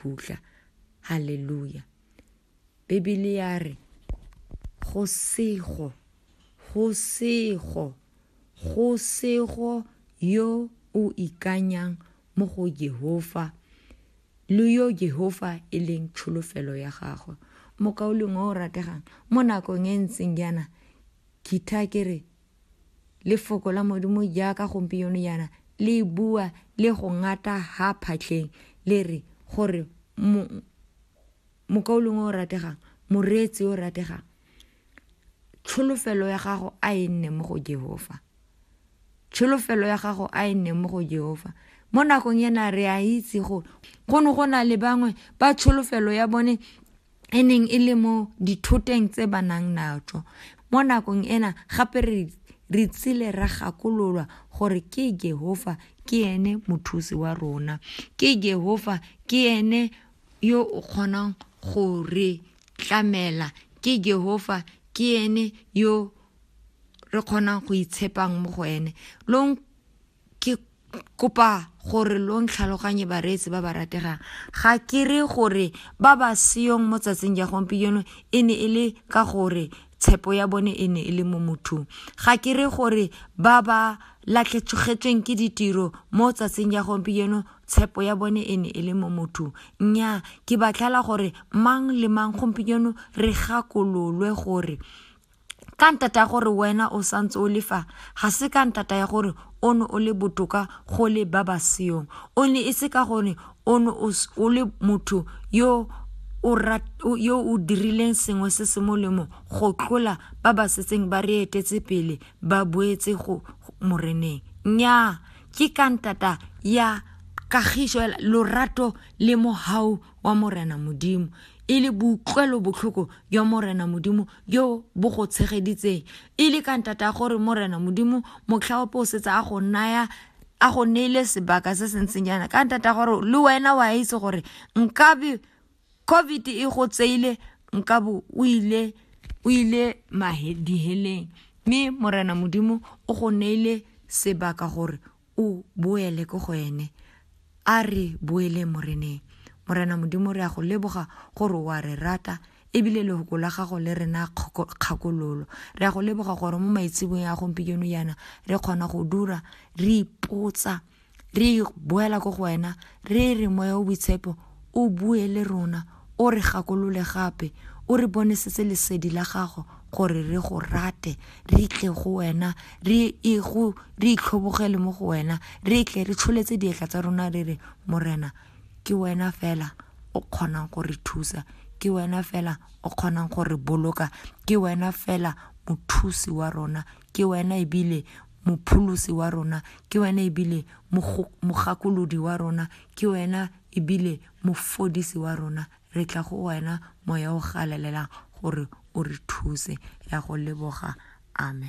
phutlha haleluya bibele ya re go sego go sego go sego yo o ikanyang mo go jehova le yo jehova e leng tsholofelo ya gagwe mokauleng o o rategang mo nakong e ntseng jaana kitha ke re Lefoko la Modimo jaaka gompieno jaana le bua le go ngata ha phatlheng, le re gore mo, mokaulong o o rategang, moreetsi o rategang, tsholofelo ya gago a e nne mo go Jehofa. Tsholofelo ya gago a e nne mo go Jehofa. Mo nakong ena re a itse gore go ne go na le bangwe ba tsholofelo ya bone e neng e le mo dithoteng tse ba nang natso mo nakong ena gape re re tsile ra gakololwa gore ke Jehova ke ene mothusi wa rona ke Jehova ke ene yo o kgonang go re tlamela ke Jehova ke ene yo re kgonang go itshepang mo go ene lo Ke kopa gore lo ntlhaloganye bareetsi ba ba rategang ga ke re gore ba ba seyong mo tsatsing ja gompieno e ne e le ka gore tshepo ya bone e ne e le mo mothong ga ke re gore ba ba latlhetsogetsweng ke ditiro mo tsatsing ja gompieno tshepo ya bone e ne e le mo mothong nnyaa ke batlhala gore mang le mang gompieno re gakololwe gore ka ntata ya gore wena o santse o lefa ga se ka ntata ya gore o ne o le botoka go le ba ba seong o ne e se ka gore o ne o le motho yo yo o dirileng sengwe se se molemo go tlola ba ba setseng ba re etetse pele ba boetse go moreneng nnyaa ke ka ntata ya kagiso lorato le mohau wa morena modimo e le boutlwelo botlhoko jwa morena modimo jo bo go tshegeditseng e le ka ntata gore morena modimo motlhaope o setse a go naya a go neile sebaka se se ntseng jaana ka ntata gore le wena wa itse gore nkabe covid e go tseile nkabe o ile o ile diheleng mme morena modimo o go neile sebaka gore O boele ko go ene. A re boeleng Moreneng. Morena Modimo, re a go leboga gore o a re rata, ebile lehoko la gago le re na kgakololo. Re a go leboga gore mo maitsebong a gompieno yana re kgona go dura re ipotsa re boela ko go wena re re moya o boitshepo o bue le rona O re gakolole gape, o re bonesetse lesedi la gago gore re go rate, re tle go wena, re e go re itlhobogele mo go wena, re tle re tsholetse dietla tsa rona re re Morena, ke wena fela o kgonang go re thusa, ke wena fela o kgonang go re boloka, ke wena fela mothusi wa rona, ke wena ebile mopholosi wa rona, ke wena ebile mogakolodi wa rona, ke wena ebile Mofodisi wa rona, re tla go wena, Moya o Galalelang, gore o re thuse. Re a go leboga. Amen.